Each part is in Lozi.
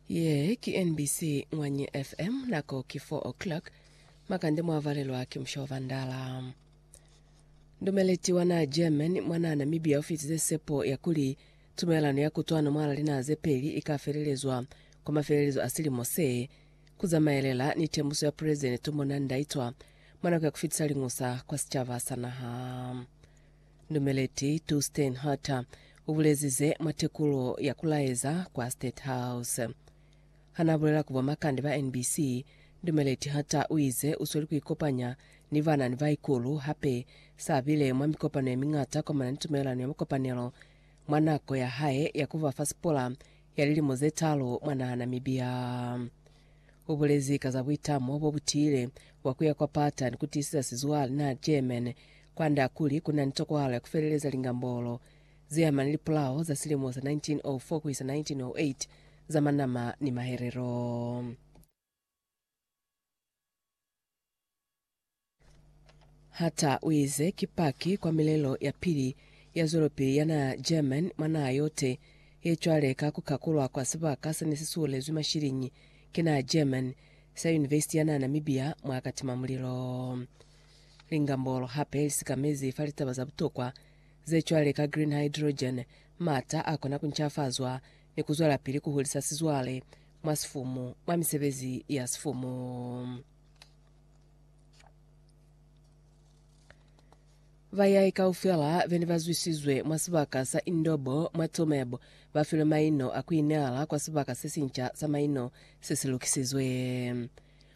Ye ki NBC Mwanyi FM, nako ki 4 o'clock, makande mwa valelwa ki musha wa Vandala. Ndumeleti wana German mwana Namibia ufitize sepo ya kuli tumelano ya kutwano mwala linaha ze peli ika felelezwa kwa mafelelezo a silimo se, kuzamaelela ni tembuso ya President Tumbo Nandi-Ndaitwah mwa nako ya kufitisa liñusa kwa sicaba sa naha. Ndumeleti Tu Steinharter ubulezi ze mwa tekulo ya kulaeza kwa State House. Hanaabulela ku bomakande ba NBC, Ndumeleti Harter uize usweli kuikopanya ni bana ni baikulu hape saabile mwa mikopano yemiñata kwamana ni tumelelano ya mukopanelo mwa nako yahae ya kuba fa sipola ya lilimo zetaalu mwa naha Namibia. U bulezi ka za buitamo bo bu tiile bwa ku ya kwa pata ni ku tiiseza sizwale naa German kwand'a kuli ku na ni tokwahalo ya ku feleleza lingambolo ze ama ni lipolao za silimo sa 1904 ku isa 1908 za manama ni mahelelo. Hata uize ki paki kwa milelo ya pili ya zwelopili ya naha German mwa naha yote ye cwale ka ku kakulwa kwa sibaka sene si suhulezwi mashiliñi ki naha German sa University ya naha Namibia mwa katima mulilo. Lingambolo hape li sikamezi fa litaba za butokwa ze cwale ka green hydrogen, mata a kona ku ncafazwa ni ku zwelapili ku hulisa sizwale mwa sifumu, mwa misebezi ya sifumu. Bayai kaufela bene bazwisizwe mwa sibaka sa Indobo mwa Tsumeb bafilwe maino a kuineala kwa sibaka sesinca sa maino sesilukisizwe.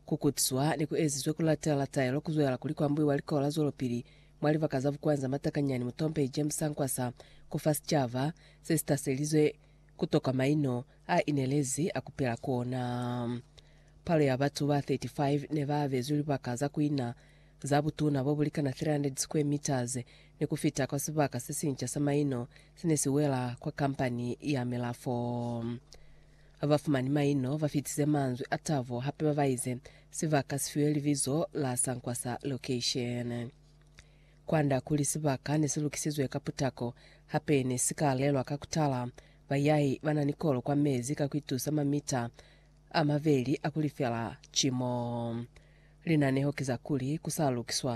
Kukutiswa nekuezizwe kulatela taelo kuzwela kuli kwambuiwa likola la zwelopili mwa libaka za Bukwanza Matakanyani Mutompehi James Sankwasa kufa sicaba sesitaselizwe kutoka maino a inelezi a kupila kona. Palo ya batu ba 35 ne ba bezwi libaka za kuina za butuna bo bulikana 300 square meters ni kufita kwa sibaka sesinca sa maino sene si wela kwa kampani ya milafo. Bafumani maino ba fitize manzwi a tabo hape ba baize sibaka si fiwe libizo la Sankwasa Location. Kwand'a kuli sibaka ne si lukisizwe ka putako, hape ne si ka lelwa ka ku tala, bayahi ba na ni kolo kwa mezi ka ku itusa mamita a mabeli a ku lifela cimo. Linaneho ki za kuli ku sa lukiswa.